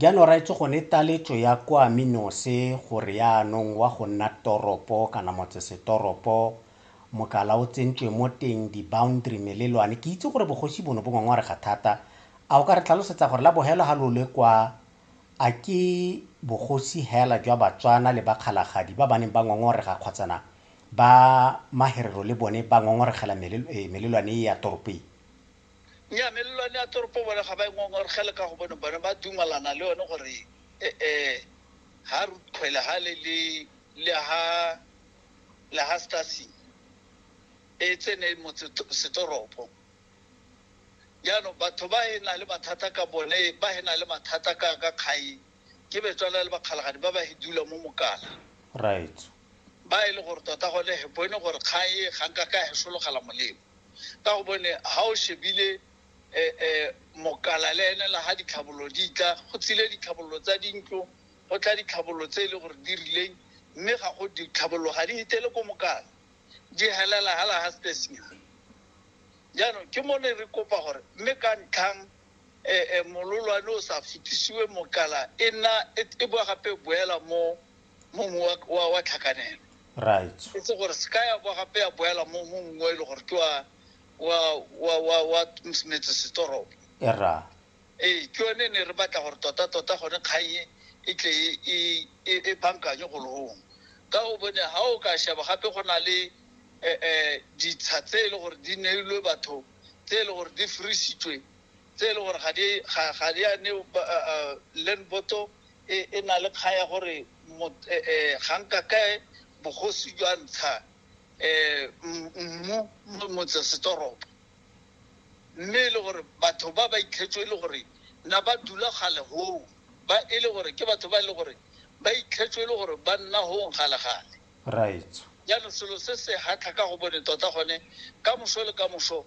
Jaanong raetsho gone taletso ya kwa Minose gore yaanong wa go nna toropo kana motsesetoropo mokala o tsentswe mo teng di-boundary melelwane ke itse gore bogosi bono bo ngongorega thata a o ka re tlhalosetsa gore la bohelo ga lo le kwa a ke bogosi hela jwa Batswana le bakgalagadi ba ba neng ba ngongorega kgotsana ba maherero le bone ba ngongoregela melelwane e ya toropeng? Nnyaa, melelwane ya toropo bone ga ba e ngongorgele ka gobane bone ba dumalana le yone gore e-e ha Ruth Khwele ha le le le ha le ha Stasi e tsene motse setoropo. Jaanong batho ba e na le mathata ka bone ba e na le mathata ka ka kgai ke betswana le bakgalagadi ba ba e dula mo Mokala. Raetsho. Ba e le gore tota gone he bone gore kgang e ga nka ka he sologela molemo. Ka gobane ha o shebile mokala le ene la ha ditlhabololo di tla, go tsile ditlhabololo tsa dintlo, go tla ditlhabololo tse e le gore di rileng, mme ga go ditlhabololo ga di hitele ko mokala, di helela hala ha stesenyana. Jaanong ke mo ne re kopa gore mme ka ntlhang mololwane o sa fetisiwe mokala e nna e boa gape boela mo. mo mong wa, wa, wa tlhakanelo right e se gore se ka ya kwa gape ya boela mo mo mongwe wa e le gore ke wa wa wa wa wa metse setoropo era ee ke yone ne re batla gore tota tota gone kganye e tle e- e- e e bankanye go logong ka o bone ga o ka sheba gape go na le um ditsha tse e le gore di neilwe batho tse e le gore di frisitswe tse e le gore ga di ga- ga di a ne ba- a- a, land boto e e na le kgang ya gore ga nka kae bogosi jwa ntsha mmu mo motsesetoropo mme e le gore batho ba ba itlhetswe e le gore na ba dula gale goo ba e le gore ke batho ba e le gore ba itlhetswe e le gore ba nna gong galegale right jaanong selo se se hatlha ka go bone tota gone ka moso le ka moso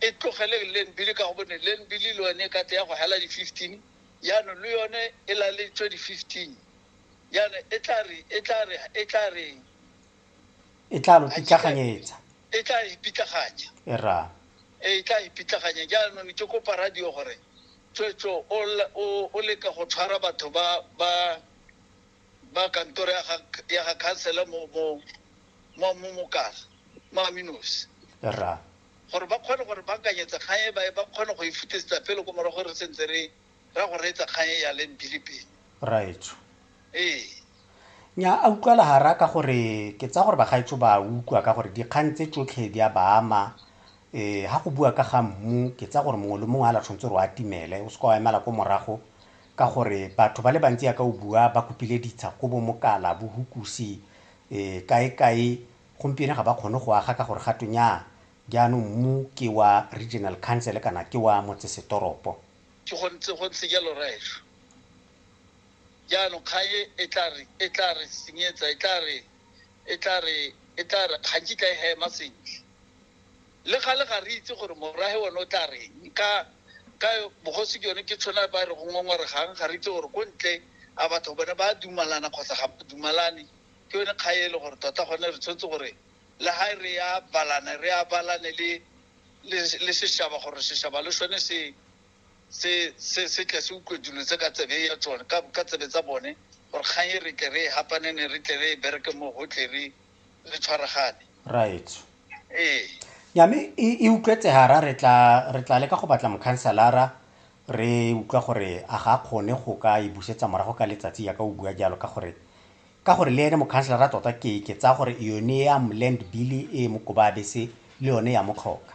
e tlogeleng Learnbili ka gobane Learnbili le yone e ka tle ya go hela di 15 jaanong le yone e laletswe di 15 jaanong e tla re e tla re e tla reng e tla lo pitlaganyetsa e tla e pitlaganya e ra e tla e pitlaganya jaanong ke kopa radio gore tswetswe o leka go tshwara batho ba ba ba kantoro ya ga, ya ga khansela mo mo mo mo mokala mo aminosi ra gore ba kgone gore ba kanyetse kgang e ba ba kgone go e futisetsa pele ko morago re sentse re ra go reetsa kgang e ya leng bile pele raetsho ee nya a utlwala hara ka gore ke tsa gore bagaetso ba utlwa ka gore dikgang tse tsotlhe di a baama eh ha go bua ka ga mmu ke tsa gore mongwe le mongwe a la tshwanetse gore o atimele o se ka wa emela ko morago Ka gore batho ba le bantsi yaka o bua ba kopile ditsha ko Bomokala, Bohukusi, kae-kae, gompieno ga ba kgone go aga ka gore ga twe nyaa, jaanong mmu ke wa Regional Council kana ke wa motsesetoropo. Ke go ntse go ntse jalo Rra etsho. Jaanong kgang e e tla re e tla re senyetsa, e tla re e tla re e tla re ga nkitla e hema sentle. Le gale ga re itse gore morwahe one o tla reng ka ka bogosi ke yone ke tshwana ba re go ngongoregang ga re itse gore ko ntle a batho bone ba dumalana kgotsa ga ba dumalane ke yone kga e le gore tota gone re tshwanetse gore le ha re ya balane re ya balane le le le seshaba gore seshaba le sone se se se se tle se utlwe dilo tse ka tsebe ya tsone ka ka tsebe tsa bone gore kgang e re tle re e hapanene re tle re e bereke mo gotlhe re re tshwaragane right ee nyame e, e utlwetse hara re tla re tla leka go batla mokhanselara re utlwa gore a ga kgone go ka e busetsa morago ka letsatsi ya ka o bua jalo ka gore ka gore le ene mokhanselara tota ke ke tsaya gore yone ya land bill e mokoba bese le yone ya motlhoka